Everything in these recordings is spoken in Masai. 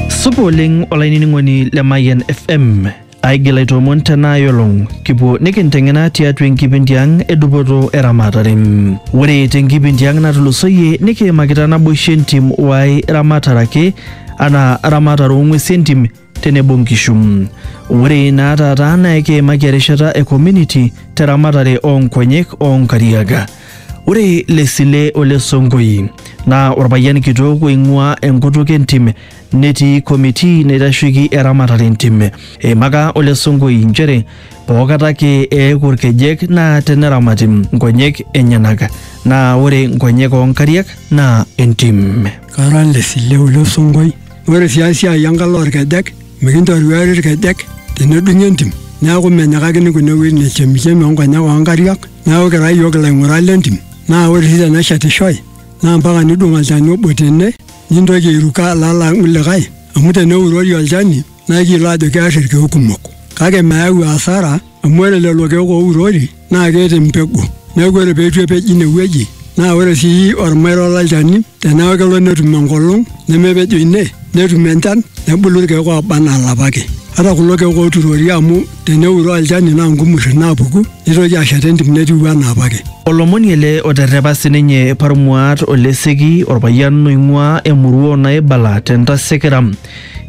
Supa oleng olainining'oni le Mayian FM. Aigil aitoomon tena ayolong kipuo nikinteng'ena tiatua enkipindi ang e dupoto eramatare. Ore tenkipindi ang natulusoyie nikiimakita naboisho entim y ramatare ake anaa ramatare oo ng'uesi entim tenebo nkishu. Ore naa taata naa ekiimaki erishata e community te ramatare oo nkonyek oo nkariak. Ore Lesile ole Sonkoi naa orpayian kitok oing'uaa enkutuk entim netii committee naitasheiki eramatare entim. Eimaka ole Sonkoi nchere pookata ake eeku irkejek naa teneramati nkonyek enyenak naa ore nkonyek oo nkariak naa entim. Kara Lesile ole Sonkoi. Ore sii esiai enkalo olkejek, mikintoruari ilkejek tenedung'i entim. Neaku menyikakini kuna wuejitin e chemichemi o nkonyek oo nkariak. Neaku kira iyiook ilaing'urak le ntim. Naa ore sii teneshetishoi naa mpaka nidung' olchani obo tene nintoki airuko alo adung' likae amu teneurori olchani naa ikiyiolo aajo kear ilkeek kumok. Kake meyau asara. amu ore lelo keek ourori naa keeta empegu neeku ore peitu epej ine wueji naa ore sii ormairo lolchani teneeku kelo netum enkolong nemepejo ine netum enchan nebulu irkeek oba anaa ilapa ake ata kulo keek oturori amu teneuroo olchani naa nkumurri naapuku nitoki ashet entim netiu anaa apake. Olomoni ele oterrepa sininye Parmuat Oleseki orpayian oing'uaa emurua o Naibala te Ntasekera.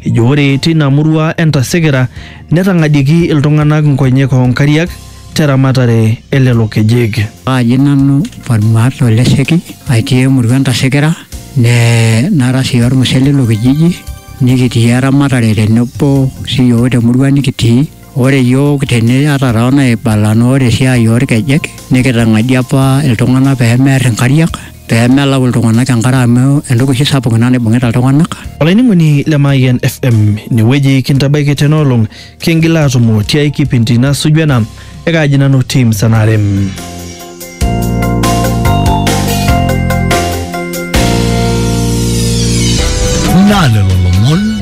Ejo ore teina murua e Ntasekera Netang'adieiki iltung'anak nkonyek oo nkariak te ramatare e lelo kejek. Kaaji nanu Farmaax Olesheki atii emurua Entasekera nee nara sii olmusee leilo kijiji nikitii eramatare tenebo sii yiook te murua nikitii. Ore yiook tene ata too naibala naa ore esiai oo lkejek nikitang'adie apa iltung'anak pee merr inkariak pee melau iltung'anak enkare amu entoki oshi sapuk ina naibung'ita iltung'anak. Olainining'oni le Mayian FM, inewueji kintabaiki tena olong, kingil aatumo tiai kipindi nasuju ena, ekaaji nanu Tim Sanarem. Naa lelo lomon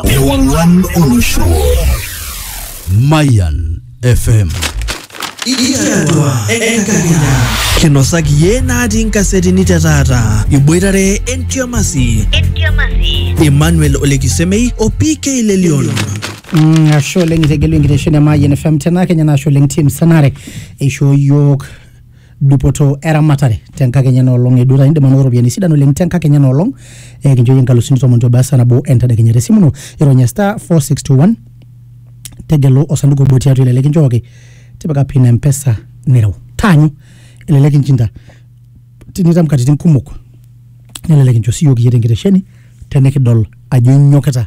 Ewangan Oneshua. Mayan FM. Ikiatua enkakenya. Kinosaki ye natii nkasetini te taata. Iboitare entiamasi. Entiamasi. Emmanuel Olekisemei o PK Lelion. Mm, ashe oleng itegelu enkitesheni e Mayian FM tena kenya naa ashe oleng team sanare eishoo yiok dupoto eramatare tenkakenya enoolong e duota indim anoto ropiyiani sidan oleng tenkakenya enoolong eh, kinchooyie inkalusuni tomon te obasa nabo entadekenya tesimu ino ironya star 4621 tegelu osanduku obo tiatua elelek inchooki tipika pin empesa nireu taanyu elelek inchinda tinitam katitin kumok nelelek incho siyiok iyie tenkitesheni tenikidol ajo inyokita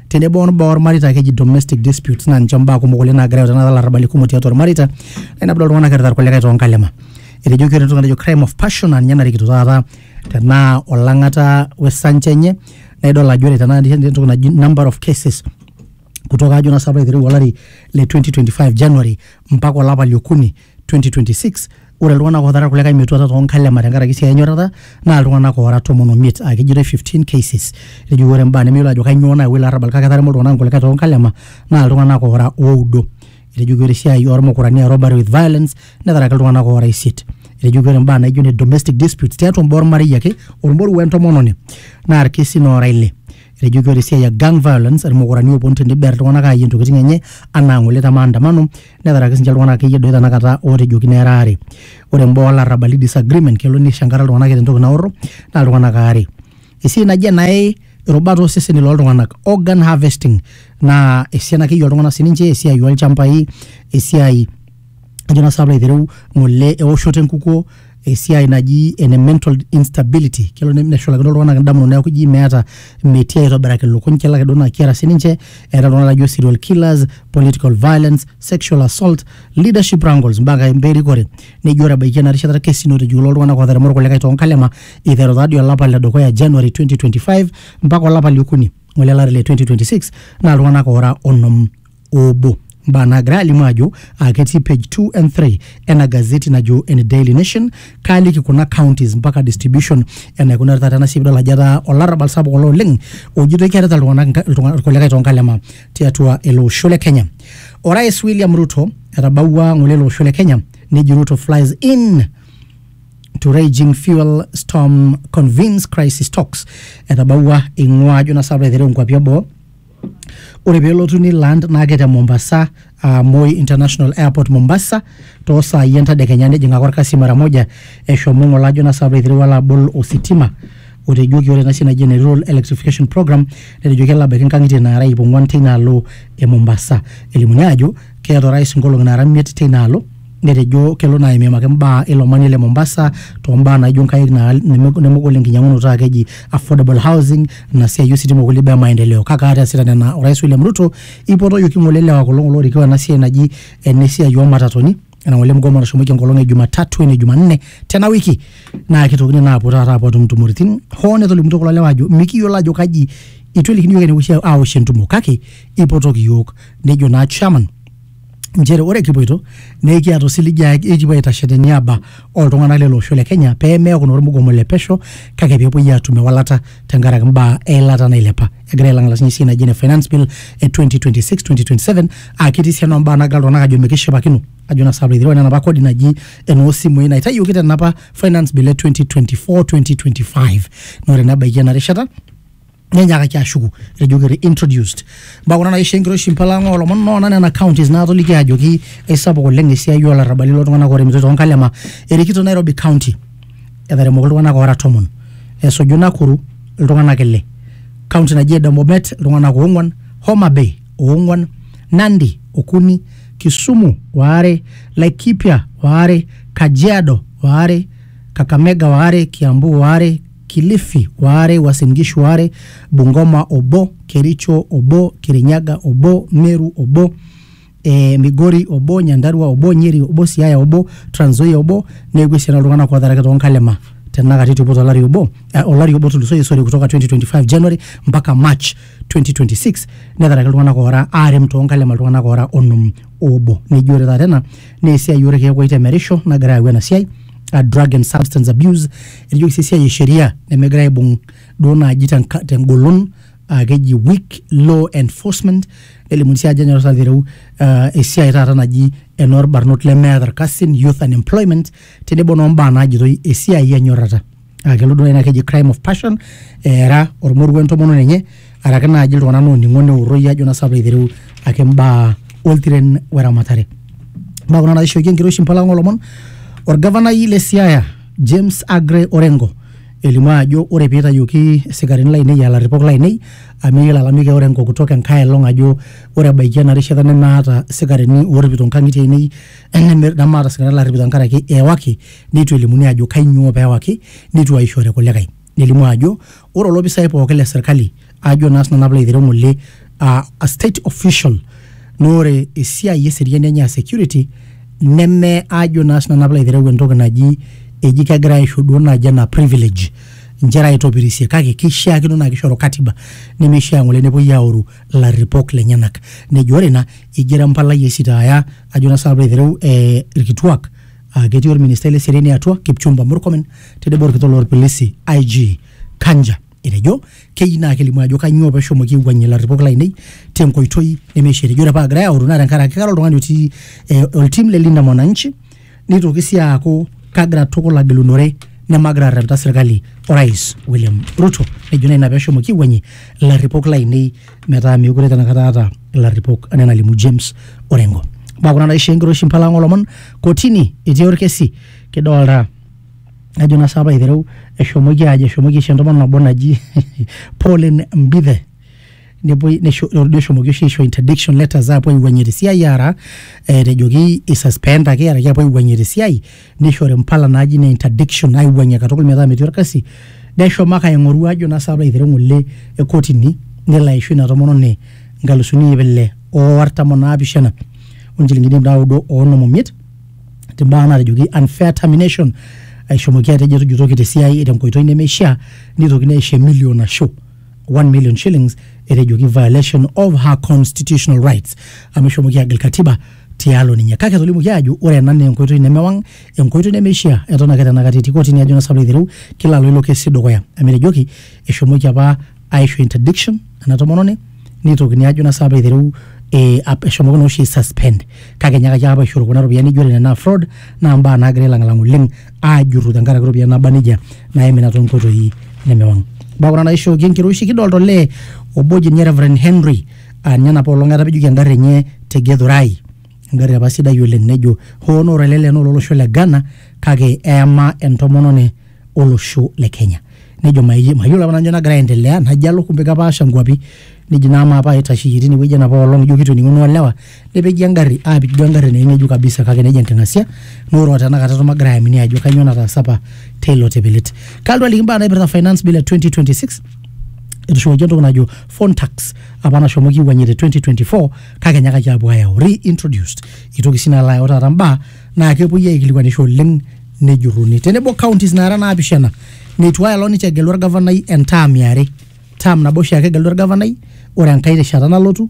tenebo ombaa ormareita keji domestic disputes naa ninche mbaa kumok oleng naagira ayau tenakata ilarrabali kumok tiatua irmareita naa ina pidol iltung'anak erita irkulikae toonkalema etejoki ore entoki natejo crime of passion aa ninye narikito taata tenaa olang'ata wesancha enye naa idol ajo ore tenakata tenijo entoki naji number of cases kutoka ajo naa sinanu piilo aitereu olari le 2025 January mpaka olapa liokuni 2026 ore iltung'anak ootara kulikae metuata too nkalema tenkaraki esiai enyorrata naa iltung'anak oora tomon omiet aa kejitoi 15 cases etejo ore imbaa nemeyiolo ajo kainyoo naayawua ilo arrabal kake etaremo iltung'anak inkulikae too nkalema naa iltung'anak oora oudo etejoki ore esiai ormukurani aa robbery with violence netaraki iltung'anak oora isiet etejoki ore imbaa naijo ne domestic disputes tiatua imbaa ormarei ake ormoruo wentomononi naa irkesin oora ile etejoki ore esiai e gang violence irmukurani ooponu teniber iltung'anak aayie intokitin enye anaa ng'ole te maandamano netaraki sinche iltung'anak akeyie doi tanakata ootejokino era aare ore imbaa olarrabali disagreement kelo nishankarra iltung'anak eeta entoki naorro naa iltung'anak aare esiai naji enaye irubat oseseni loltung'anak organ harvesting naa esiana akeyie oltung'anak sininche esiai olchambai esiai ajo naa sinanu piilo aitereu ng'ole ewoshoto enkukuo. esiai naji ene mental instability kelo ne- neshulakino iltung'anak indamunot neeku ji meeta metii aitobiraki ilukuny kelo ake duo naa kiata sininche eeta iltung'anak lajo serial killers political violence sexual assault leadership wrangles mpaka kai mbaa erikore neji ore ebaiki ena rishata irkesin otijiku loo ltung'anak ootaremo irkulikae toonkalema iteru taadii olapa le dukuya january 2025 mpaka olapa liokuni ng'ole lari le 2026 naa iltung'anak oora onom obo mbaa naagira alimu ajo uh, ketii page 2 and 3 ena gazeti najo ene Daily Nation kaaliki kuna counties mpaka distribution enaikunari taata ena siai pidol ajo etaa olarrabal sapuk olo oleng ojitoi kearita iltung'anak nka- iltung'a- irkulikae toonkalema tiatua ele osho le Kenya orais William Ruto etabawua ng'ole ele osho le Kenya neji Ruto flies in to raging fuel storm convenes crisis talks etabawua ing'ua ajo na sababu aiteru nkuapi eboo ore pelotu ni land naake te Mombasa uh, Moi International Airport Mombasa too saai entadekenya nejing ake orkasi mara moja eshomo ng'ole ajo naa sababu eiterua alo abol ositima otejoki ore ena siai naji ene rural electrification program netejo kelo abaiki nkang'itie naara iip ong'uan teina alo e Mombasa elimuni aajo keeta orais nkolong'i naara imiet teina alo netejo kelo naa aimiimaki mbaa ilo manie le Mombasa too mbaa naijo nkaik naa neme- nemegol enkinyiang'unoto aa keji affordable housing ina siai ositima okulie baa e maendeleo kake aata easita nena orais William Ruto eipotoyioki ng'ole lewa kulo ng'ole oorikoo ena siai naji ene siai oo matatoni ena ng'ole mgomo nashomoki enkolong e Jumatatu ene Jumanne tena wiki naa kitokini naa aapuo taata aapuo atum intumoritin hoo netolimutuo kulo lewa aajo mikiyiolo aajo kaji eitu elikini iyiook enewoshi awosh entumo kake eipotoki iyiook nejo naa chairman nchere ore kipoito naa ekiata osiligi aa ekipuo aitashe teniaba oltung'anak lele osho le Kenya pee meeku naa ormugomo le pesho kake pee epuoi aatum ewalata tenkaraki mbaa eilata nailepa. Egira ailang'ala sinye esiai naji ene finance bill e 2026-2027 aa ketii sii ena mbaa naagira iltung'anak aajo mikishipakino ajo naa sinanu piiyiolou enaa enapa kodi naji enoo simui naitayioki tena apa finance bill e 2024-2025. Naa ore naa ebaiki ena rishata nenyakaki ashuku ejoki reintroduced mbaa kuna naisho enkiroshi mpalang'a oolomon noona nena counties naatoliki ajoki eisapuk oleng esiai oolarrabali loltung'anak ooremitoi toonkalema erikito Nairobi County etaremoki iltung'anak oora tomon esuju Nakuru iltung'anak ile county naji ene Bomet iltung'anak oong'wan Homa Bay oong'wan Nandi okuni Kisumu waare Laikipia waare Kajiado waare Kakamega waare Kiambu waare Kilifi waare, Uasin Gishu waare, Bungoma obo, Kericho obo, Kirinyaga obo, Meru obo, e, Migori obo, Nyandarua obo, Nyeri obo, Siaya obo, Trans Nzoia obo, neeku esiana oltung'anak ootaraki too nkalema tenakata etupo tolari obo eh, olari obo otulusoyie sorry kutoka 2025 January mpaka March 2026 netaraki iltung'anak oora aarem too nkalema iltung'anak oora onom oobo neji ore taata ena naa esiai orkeek oitemerisho nagira ayau ena siai a drug and substance abuse enijoki sii esiai e sheria nemegirae aibung duo naaji tenka- tengolon aa keji weak law enforcement nelimuni sii ajo enyorrata aitereu ah, esiai taata naji enoorbarnot lemeeta irkasin youth unemployment tenebo noombaa naajitoi esiai enyorrata aa kelo duo naaji naa keji crime of passion eera ormoruo entomononi enye araki naaji iltung'anak looning'o neuroi ajo naa sababu aitereu ake imbaa oltiren weramatare mbaa kuna naishoki enkiroshi mpalang'a olomon orgavanai le siaya James Agre Orengo elimu ajo ore pee itayioki isikarini lainei aa larripok lainei amu eyiolo alamik e Orengo kutoka enkae elong ajo ore ebaiki ena rishata nemaata isikarini oorripito inkang'itie ainei neme- nemaata isikarini laarripito tenkaraki eewaki neitu elimuni ajo kainyoo pee ewaki neitu aishori kulikae. nelimu ajo ore olopisai pooki le serkali ajo naa sinanu apilo aitereu ng'ole uh, a state official naa ore esiai eseriani enye a security neme ajo naa sinanu apilo aitereu entoki naji eji kegira aisho duo naaji ena privilege inchere aitopirisie kake keishiakino naa kishoru katiba nemeishia ng'ole nepuoi aoru ilarripok lenyenak nejo ore ina igero empalai aisitaaya ajo naa sinanu apilo aitereu eh, irkituak Ah, ketii olministai le seriani atua Kipchumba Murkomen tenebo olkitok lolpilisi IG Kanja etejo keyieu naa kelimu ajo kanyoo peshomoki aiwuang'ie ilarripok lainei tenkoitoi nemeishia. Etejo ore paa egirai aoru naa tenkaraki kara oltung'ani otii eh, oltim le Linda Mwananchi nitoki sii aaku kagira tukul agilunore nemagira arrepita serkali orais William Ruto. Nejo naa ina peshomoki aiwuang'ie ilarripok lainei metaa meekure tenakata aata ilarripok anaa enalimu James Orengo. Mbaa kuna naisho enkiroshi mpala ang' olomon kotini etii orkesi kidolta ajo naa sapa aitereu eshomoki ajo eshomoki aisho entomononi nabo naji Pauline Mbithe nepuoi nesho ordo eshomoki oshi aisho interdiction letters aapuo aiwuang'ie tesiai aara eh, etejoki isuspendaki araki apuo aiwuang'ie tesiai neishori mpala naaji ne interdiction aiwuang'ie katukul metaa metii orkasi neshomo ake aing'oru ajo naa sababu aitero ng'ole e kotini nelo aisho ina tomononi nkalusuni iip ile o artam onaapishana onchilingini iip naudo oonom omiet timbaa naatejoki unfair termination aishomoki atejo etujutoki tesiai tenkoitoi nemeishaa neitokini aisho emilio nasho 1 million shillings etejoki violation of her constitutional rights amu eshomoki agil katiba tialo ninye kake etolimuoki aajo ore ena naa enkoitoi nemewang enkoitoi nemeishiaa eton ake tenakata etii kotini ajo naa saplo aitereu kila alo ilo kesi dukuya amu etejoki eshomoki apa aisho interdiction ena tomononi nitokini ajo naa saplo aitereu eh, ap- eshomoki naa oshi suspend kake enyaakaki apa aishoru kuna ropiyiani nijo ore nena naa fraud naa mbaa naagira ailang'lang oleng ajurru tenkaraki ropiyiani naba nejia naimina toonkoitoi nemewang mbaa kuna naishooki enkiroshi kidolta olee obo oji ninye Reverend Henry aa ninye enapa olong etapejoki engarri enye te Githurai engarri apa sidai oleng nejo hoo naa ore ele lee naa ololosho le Ghana kake eyama entomononi olosho le Kenya nejo mayi- mayiolo apa nanu ajo nagira aendelea najo alo kumbe kepaasha nkuapi neji naa amaa paaitasheyie tinewueji enapa olong ijo kitoning'uno olewa nepeji engari aapik duo engari naa ing'ejuk kabisa kake nejia enking'asia naa ore otenakata eton magira aamini ajo kainyoo nataasa apa teilo tipilit kalotu aliki imbaa naipirta finance bill e 2026 etushukoki entoki najo phone tax apa nashomo kiwuang'ie te 2024 kake enyakaki apuo ayau reintroduced itoki sii nalo ayau taata mbaa naa kepuoi aikilikuanisho oleng nejurruni tenebo counties naara naapishana neitu aelong ninche egelu orgavanai entaam iare taam nabo oshiake egelu orgavanai ore enkae rishata nalotu